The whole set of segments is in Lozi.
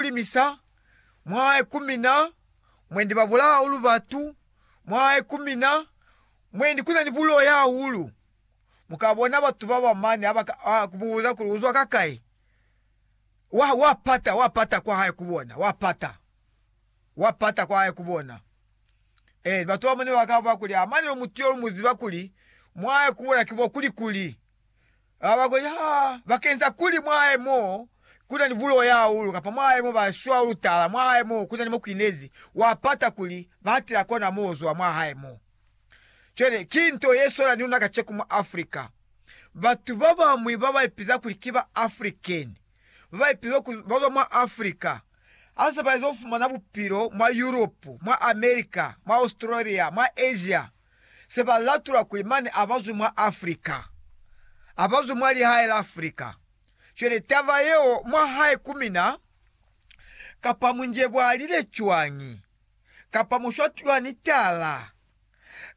kulimisa, mwahae kumina, mwendi babulaa hahulu batu, mwahae kumina, mwendi kunani buloya hahulu. Mukabona batu baba mane ha kumubuza kuli uzwa kakai, wa, wa pata, wa pata kwa hae kubona, wa pata, wa pata kwa hae kubona. Eh, batu bamane bakaba kuli amane mutu yo muziba kuli mwahae kubona kibo kuli kuli. Ha ba koni ha bakenza kuli mwahae mo kuna ni bulo ya hahulu kapa mwahae mo ba shwa hahulu tala, mwahae mo kuna ni mo kwinezi, wa pata kuli ba hatela kona mo zwa mwahae mo. Cwale, ki nto ye swana ni luna kaceko mwa Africa. Batu ba bañwi ba ba ipiza kuli ki ba African, ba ba ipiza ku ba zwa mwa Africa, ha se ba ezo fumana bupilo mwa Europe, mwa America, mwa Australia, mwa Asia, se ba latula kuli mane a ba zwi mwa Africa, a ba zwi mwa lihae la Africa. Cwale taba yeo mwa hae ku mina, kapa mu njebwalile cwañi, kapa mu shwa cwani tala,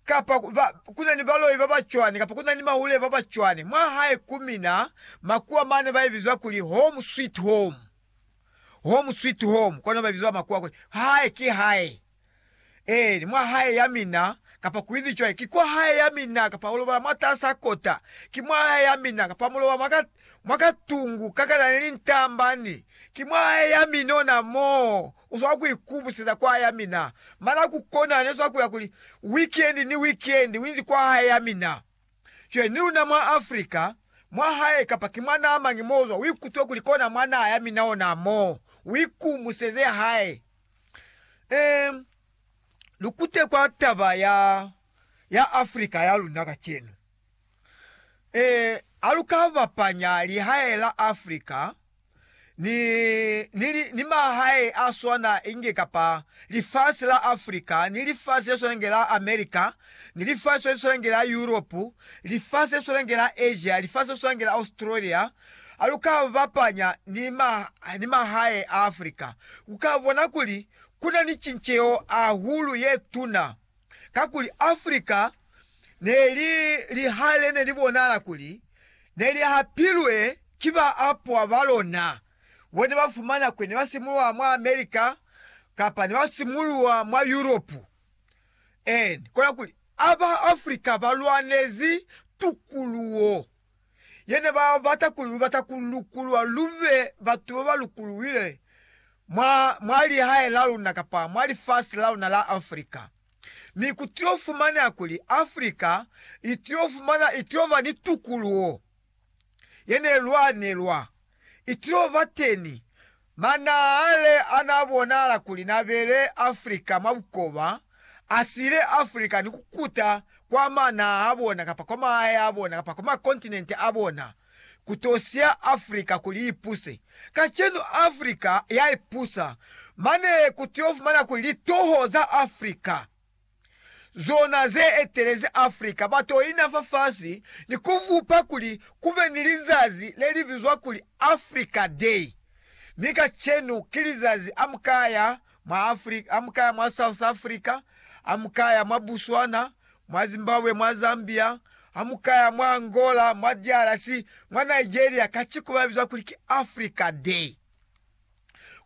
kapa ba, ku na ni baloi ba ba cwani, kapa ku na ni mahule ba ba cwani, mwa hae ku mina, makuwa mane ba ibiza kuli Home Sweet Home, Home Sweet Home, kono ba ibiza makuwa kuli, Hae ki hae. Ee, ni mwa hae ya mina, kapa kuibi cwañi, ki kwa hae ya mina, kapa ulobala mwatas'a kota, ki mwa hae ya mina, kapa mulobala mwa ka, mwa ka tungu ka kana ni lintamba, ni, ki mwa hae ya mina ona moo, uswanga ku ikubuseza kwa hae ya mina. Mana ku kona, ne swa kuya kuli, wikendi ni wikendi, uinzi kwa hae ya mina. Cwale, ni luna mwa Africa, mwa hae, kapa ki mwa naha mañi mo uzwa, uikutwe kuli kona mwa naha ya mina ona moo, uikubuseze hae. Eh, lukute kwa taba ya ya Afrika ya luna kacenu. Eh, alukabapanya lihae la Afrika ni ni, li, ni mahae a swana inge kapa lifasi la Afrika ni lifasi le swana inge la Amerika ni lifasi le swana inge la Europe, lifasi le swana inge la Asia, lifasi le swana inge la Australia, Ha lu ka bapanya ni mahae a Africa, lu ka bona kuli ku na ni cinceho hahulu ye tuna, kakuli Africa ne li liha le ne li bonahala kuli ne li hapilwe ki baapwa ba lona bo ne ba fumana kuli ne ba simuluha mwa America kapa ne ba simuluha mwa Yuropu. Ee, kona kuli, a ba Africa ba lwanezi tukuluho. ye ne ba bata kuli lu bata ku lukulwa lu be batu ba ba lukuluwile mwa, mwa lihae la luna kapa mwa lifasi la luna la Africa. Mi ku tilo fumaneha kuli Africa i tilo fumana, i tilo ba ni tukuluho ye ne lwanelwa. Ity'o bateni, manahale anaabonahala kuli nabele Africa mwa bukoba asile Africa ni kukuta kwa manaha abona kapa kwa mahae abona kapa kwa makontinente abona kuto siya Africa kuli ipuse. Kacenu Africa yaipusa, mane kutyofumana kuli litoho za Africa, zona ze etelezi Africa ba to ina fafasi ni ku bupa kuli ku be ni lizazi le li bizwa kuli Africa Day. Mi kacenu ki lizazi a mu ka ya mwa Africa, a mu ka ya mwa South Africa, a mu ka ya mwa Botswana, mwa Zimbabwe, mwa Zambia, a mu ka ya mwa Angola, mwa DRC, mwa Nigeria, kaciku ba biza kuli ki Africa Day.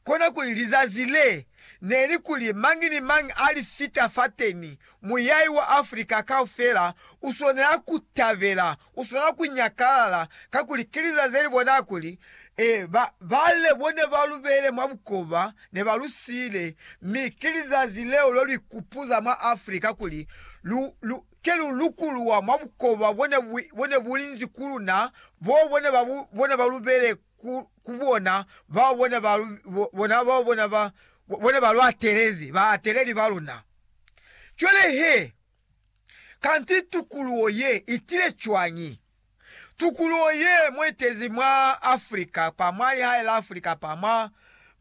konakuli lizazi le neli kuli mañi ni mañi a li fita fateni, muyai wa Africa kaufela uswanela ku tabela, uswanela ku nyakalala, kakuli ki lizazi leli bona kuli ba, ba le bone ba lu beile mwa bukoba ne ba lu siile, mi ki lizazi leo lu li kupuza mwa Africa kuli lu, lu, ke lu lukuluwa mwa bukoba bone, bone bulinzi ku luna, bo bone ba, bone ba lu beile ku, ku bona bao bona ba, bona bao bona ba, bona ba lu atelezi, baateleli ba luna. Cwale he, kanti tukuluho ye itile cwañi? Tukuluho ye mo itezi mwa Afrika, pa mwa lihae la Afrika, pa mwa,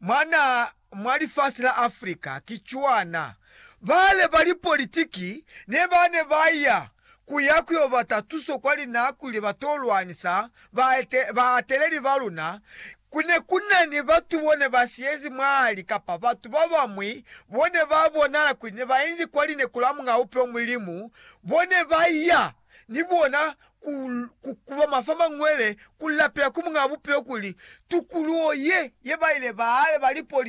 mwa na, mwa lifasi la Africa ki cwana, bale ba lipolitiki ne ba ne ba ya ku ya ku yo bata tuso kwa linako ili ba to lwanisa baateleli ba luna, ku ne ku na ni batu bo ne ba siyezi mwahali kapa batu ba bañwi bo ne ba bonahala kuli ne ba inzi kwa lineku la Muñ'a Bupilo Mulimu, bo ne ba ya ni bona ku kukuba mafamanngwele ku lapela ku Muñ'a Bupilo kuli tukuluho ye ye ba ile bale ba lipolitiki